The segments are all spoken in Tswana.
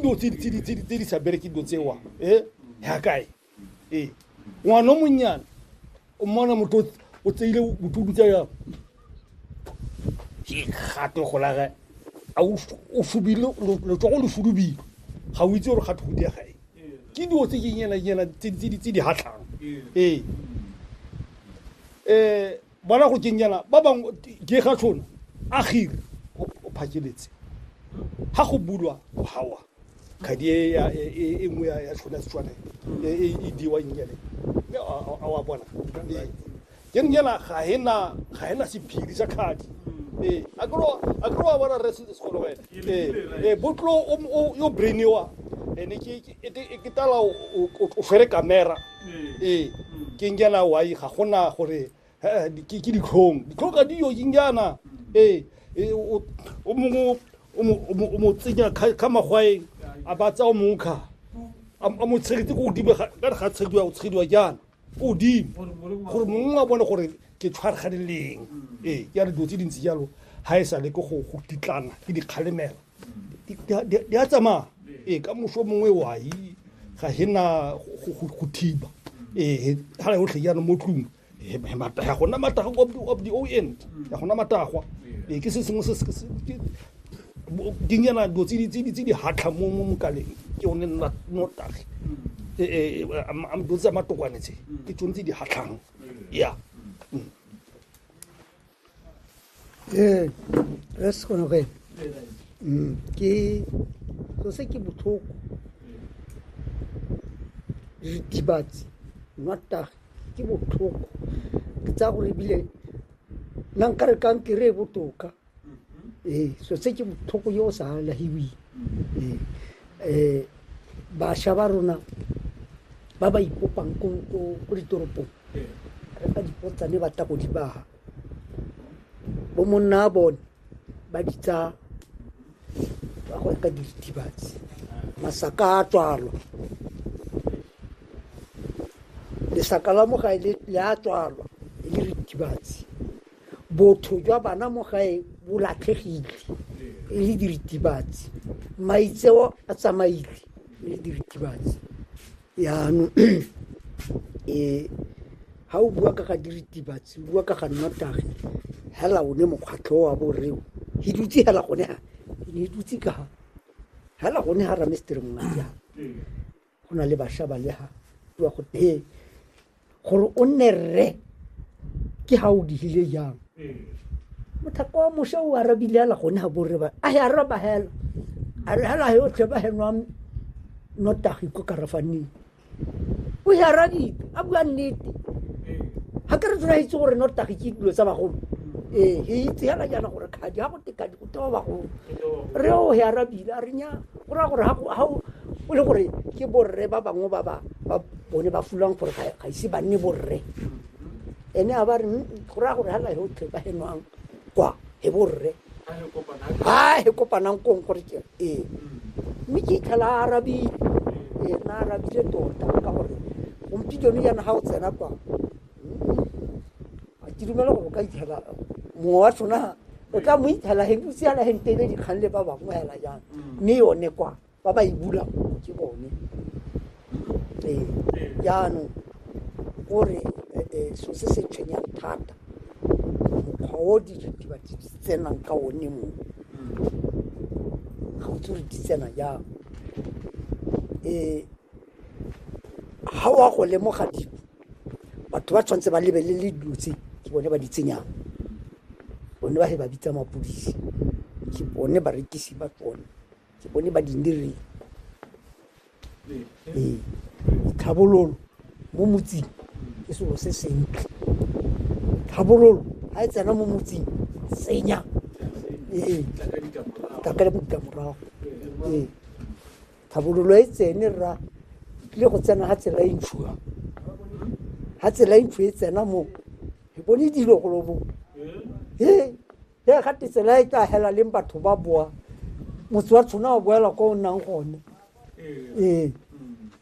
dilo tse di- tse di- tse di- tse di sa bereke dilo tsewa e ya kae ee ngwana o monnyane o mmona motho o- o tseile botudu tsa yang ke gato golage a o fu- o fubile lo- letsogo le fudubile ga o itse gore gato go dia gae ke dilo tse ke nyena nyena tse di- tse di- tse di hatlhang ee um Bona go kenyela ba bangwe Gegatlhono a Gir o phakeletse ha go bulwa go hawa kgadi e ya e e e nngwe ya ya tlhona Setswana e e e e diwa nyele. Mme a a- a wa bona. Ee. Ke re nyela ga e na ga e na sephiri sa kgadi. Ee. A ke re wa- a ke re wa bona Rre Se- Sekgolo wena. Ee. Ee, Botlo o o yo brain-iwa ene ke ke e ke tala o o- o tshwere kamera. ee ke njana wai ga gona gore ke ditlhong ditlhong ga diyo ke njana ee o mongwe o mo tsenya ka magwaeng a ba tsaya o mongwe kga a mo tshegetse ko godimo ka re ga tshegediwa o tshegediwa jaana ko godimo gore mongwe a bone gore ke tshwarganeleng ee ke ya re dilo tse dintsi jalo ga e sa le ke go titlana ke dikgalemela di a tsamaya ee ka moso mongwe wai ga hena go thiba ee ga yotlhe jaanong mo tlung ga gona matagwa of the o end ga gona matagwa ee ke se sengwe dinyana dilo tse di hatlha mo mokaleng ke one notagi ee dilo tse tsa matokwane tse ke tsone tse di hatlhang ya ee re se kgone go ena Mm, ke so se ke botlhoko ritibatsi nwatage ke botlhoko ke tsaya gore ebile nna nka re kankere e botoka ee so se ke botlhoko yo o sa lahiweng ee um bašwa ba rona ba ba ipopang ko ko- ko ditoropong re fa dipotsane ba tla go di baga bo monna a bone ba ditsa ba go reka diritibatsi masaka a tswalwa lesaka la mo gae le le a tswalwa e le ritibatsi botho jwa bana mo gae bo latlhegile e le diritibatsi maitseo a tsamaile e le diritibatsi Jaanong ga o bua ka ga diritibatsi, o bua ka ga nnotagi, hela one mokgwatlho o wa bo rre o, ke dutse hela gone ha, ke ne dutse ka ha, hela gone ha Ramestere Mongadi ha, go na le basha ba le ha, bua go teng. gore o nne rre ke ga o digile jang mothako wa mosha o arabile ala gone ga borre ba a ya araba hela a re hela yo tlhe ba henwa notagi ko karafaneng o ya arabile a bua nnete ga ke re tsena itse gore notagi ke dilo tsa bagolo ee ge itse hela jaana gore kgadi ga go tekadi go tewa bagolo re o ya arabile a re nya Go raya gore ga o le gore ke borre ba bangwe ba ba bone ba fulwang gore ga ise ba nne borre ene a ba re go raya gore ga layo tlhe ba henwang kwa he borre ha he kopanang kong gore ke ee mme ke itlhela a arabile ee na arabile tota ka gore gompieno yana ga o tsena kwa a ke dumela gore o ka itshela mongwe wa tsona o tla mo itshela heng o siana heng tebe dikgang le ba bangwe hela jang mme yone kwa ba ba e bulang ke bone ee jaanong gore eh, eh, so se se tshwenyang thata mokgwa o diritibatsi di tsenang ka one mo ga o tse gore di tsena jang um ga o a go lemoga dilo batho ba tshwanetse ba lebelele dilo tse ke bone ba di tsenyang bone ba he ba bitsa mapodisi ke bone barekisi ba tsone ke bone ba dindireng ee tlhabololo mo motseng ke selo se sentle tlhabololo ga e tsena mo motseng tsenya ee tla ka ditlamorago ee Tlhabololo e tsene rra e tlile go tsena ga tsela e ntshu ha ga tsela e ntshu e tsena mo e bone dilo go lobo he he ga te tsela e tla hela leng batho ba boa motse wa tshwana wa boela kwa o nnang gone ee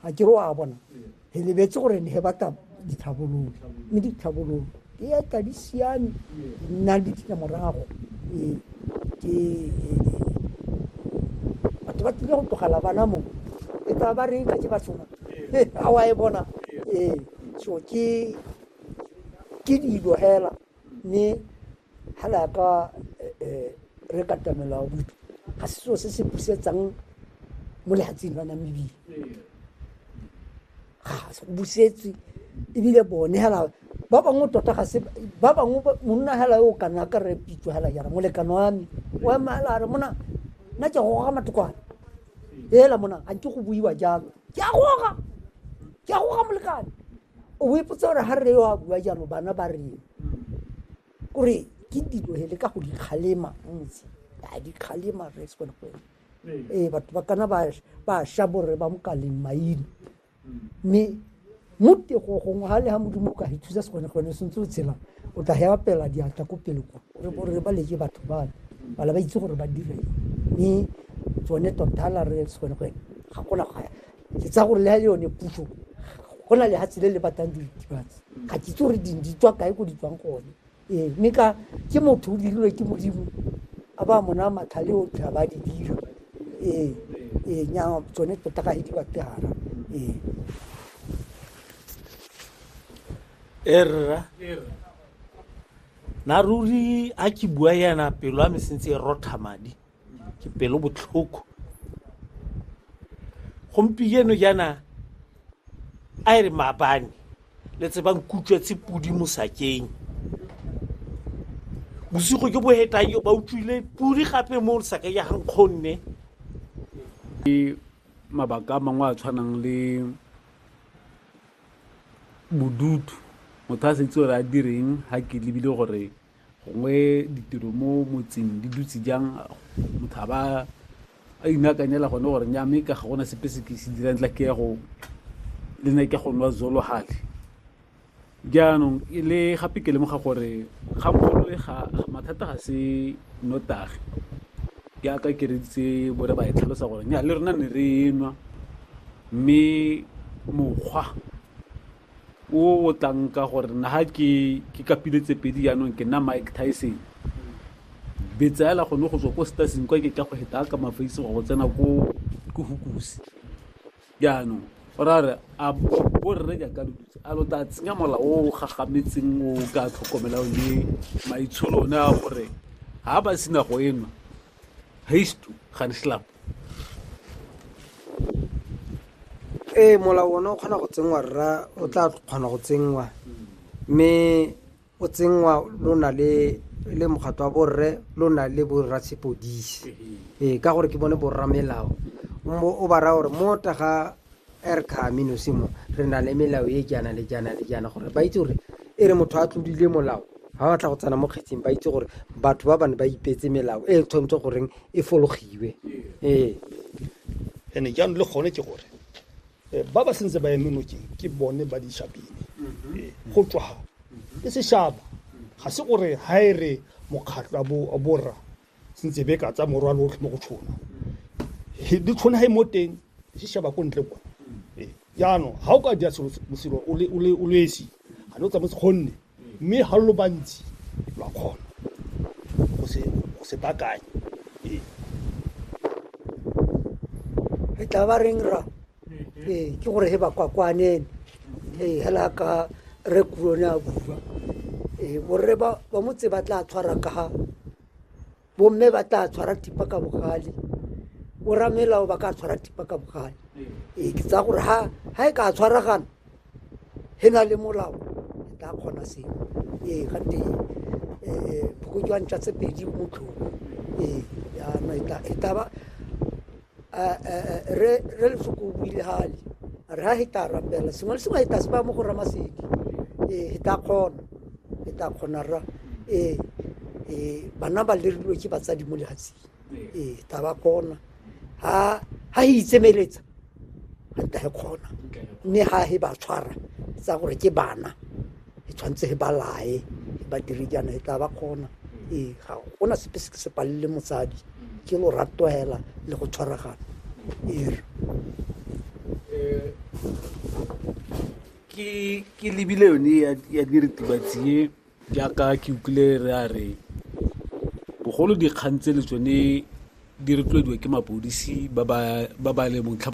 ga ke re wa bona re lebetse gore ne ba ka ditlhabololo mme ditlhabololo ke ya ka di siame di nna le ditlamorago ee, ke ee, batho ba tlile go tlogela bana mo e tla ba re tlatse ba soma a wa e bona ee so ke ke dilo hela Mme ga re ya ka re katamela wa botho ga se seo se se busetsang mo lehatsing lwa namibile ga se go busetswe ebile bone hela ba bangwe tota ga se ba bangwe monna hela yo o kana ka re pitso hela jara molekano wa me o ema hela re mona nna ke goga matokwane hela mona ga nke go buiwa jalo ke a goga ke a goga molekane o ipotsa gore ga rre yo a bua jalo bana ba reng kore ke dilo hele ka go dikgalema ntse a dikgalema re se kone go ee batho ba kana ba ba sha borre ba mokaleng maina mme mo tego gongwe ga le ga modimo o ka ithusa se kone gone sentse o tshela o tla hewa pela diatla ko pele kwa re bo re ba leke batho ba bala ba itse gore ba dire mme tsone totala re se kone go ga gona ga Ke tsaya gore le ha e le yone puso go na lehatshe le le batlang diritibatsi ga ke itse gore ding di tswa kae ko di tswang gone ee mme ka ke motho o dirilwe ke modimo a ba mona matlhale o tla ba di dira ee ee nya tsone tota ga e di batle gara ee erra na ruri a ke bua yana pelo a me sentse e rotha madi ke pelo botlhoko gompieno jaana a e re maabane le tsebang kutswetse pudi mosakeng bosigo jo bo hetang jo ba utlwile pudi gape mo saka ya gankgonne mabaka a mangwe a tshwanang le bodutu motho a setse gore a direng ga ke lebile gore gongwe ditiro mo motseng di dutse jang motho a ba a inakanyela gone gore nya mme ka ga gona sepe se ke se dirang tla ke ya go le ne ke go nwa zolo gale jaanong le gape ke lemoga gore kgangkgolo e ga mathata ga se notagi jaaka ke reditse bore ba e tlhalosa gore nya le rona ne re nwa mme mokgwa o o tlang ka gore nna ga ke ke kapile tse pedi jaanong ke nna mike tyson betsaela gone go tswa ko staseng kwa ke tla go heta ka mafaise go tsena ko ko hukusi jaanong o ra re a borre jaaka lo dutse a lo tla tsenya mola o gagametseng o ka tlhokomelang le maitsholo one a gore ga ba sena go enwa hörst du, kann ich schlapp. ee molao one o kgona go tsenngwa rra o tla kgona go tsenngwa mme o tsenngwa lo na le le mokgatlo wa borre lo na le borra sepodisi ee ka gore ke bone borra melao o ba raya gore mo taga Er ka amino se mo, re na le melao e jaana le jaana le jaana gore ba itse gore e re motho a tlodile molao ha batla go tsena mo kgetseng ba itse gore batho ba bane ba ipetse melao e tshwanetse goreng e fologiwe ee ene jaanong le gone ke gore eh, ba ba sentse ba eme nokeng ke bone ba dishabine mm-hmm. eh, go tswa ga mm-hmm. ke seshaba ga se gore ha e re mokgatlho a borra sentse be ka tsa morwalo otlhe mo go tshona di tshwana ha e mo teng di sheba ko ntle kwa ee, jaanong ga o ka dira selo o le esi ga ne o tsametse kgonne mme ga lo bantsi lwa kgona go se bakanye ee. e tla ba reng ra ee ke gore he bakwakwanene ee hela ka re kurone a bua ee borre ba ba motse ba tla tshwara ka ga bomme ba tla tshwara tipa ka bogale boramelao ba ka tshwara tipa ka bogale ee ke tsaya gore ha ha e ka tshwaragana he na le molao e tla kgona seo ee gante phokojwang tsa tse pedi motlhong ee yana e taba re re lefoko o buile gale re ha he ta rapela sengwe le sengwe he ta se ba mo go ramasedi ee he ta kgona he ta kgona ra ee ee bana ba lerilwe ke batsadi mo lehatsing ee ta ba kgona ha ha itsemeletsa ga nka he kgona mme ha he ba tshwara tsa gore ke bana e tshwanetse he ba lae ba dire jaana e tla ba kgona ee ga go na sepe se ke se palele motsadi ke lorato hela le go tshwaragana ee ke lebile yone ya diritibatsi e Jaaka ke utlwile re a re bogolo dikgang tseno tsone di rotloediwa ke mapodisi ba ba leng .